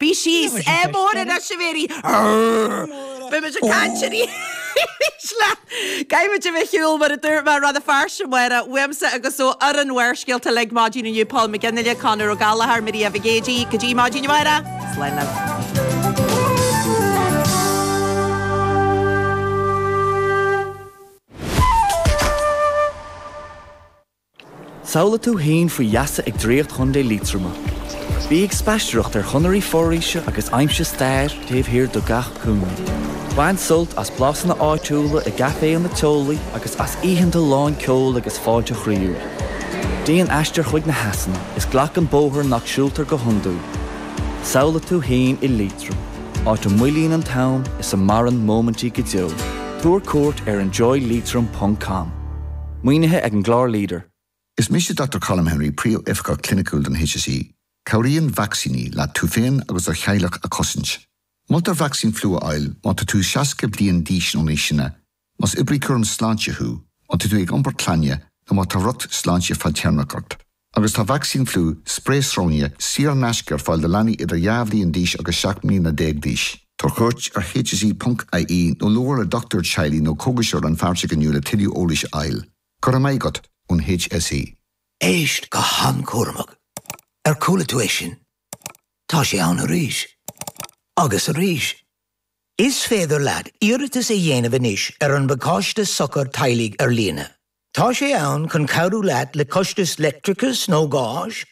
Bhí sí is ea mór in Echeverry. Arrgh! Beimid ag caint aríst leat. Caithfimid a bheith ar shiúl, mar a dúirt mé, clár fairsing amárach, uaimse agus ó fhoireann Bharrscéalta uilig, maidin inniu, Paul McGinley, Conall Ó Gallchóir, Miri Avigeji. Go dtí maidin amárach, slán leat. Samhlaigh tú fhéin faoi gheasa ag draíocht Chontae Liatroma. Bí ag spaisteoireacht ar chonairí foraoise agus aimsigh stair taobh thiar de gach cúinne. Bain sult as blasanna áitiúla i gcaiféanna teolaí agus as oícheanta lán ceol agus fáilte chroíúil. Déan aistear chuig na heasanna is glac an bóthar nach siúltar go hiondúil. Samhlaigh tú fhéin i Liatroim, áit a moillíonn an t-am is a mhaireann móimintí go deo. Tabhair cuairt ar enjoyleitrim.com. Maoinithe ag an gclár leader. Is mise Dr Colm Henry, Príomhoifigeach Cliniciúil don HSE. Cabhraíonn vacsaíní leat tú féin agus do theaghlach a chosaint. Moltar vacsaín fliú a fháil má tá tú 60 bliain d'aois nó níos sine, más oibrí cúraim sláinte thú, má tá tú ag iompar clainne nó má tá riocht sláinte fadtéarmach ort. Agus tá vacsaín fliú, sprae sróine, saor in aisce ar fáil do leanaí idir dhá bhliain d'aois agus seacht mbliana déag d'aois. Tabhair cuairt ar hse ponc ie nó labhair le dochtúir teaghlaigh nó cógaiseoir rannpháirteach inniu le tuilleadh eolais a fháil. Go raibh maith agat ón hse. Éist go han-cúramach. Ar chuala tú é sin? Tá sé ann arís. Agus arís. Is féidir leat iarratas a dhéanamh anois ar an bpacáiste Sochar Teaghlaigh ar líne. Tá sé ann chun cabhrú leat le costais leictreachais nó gáis.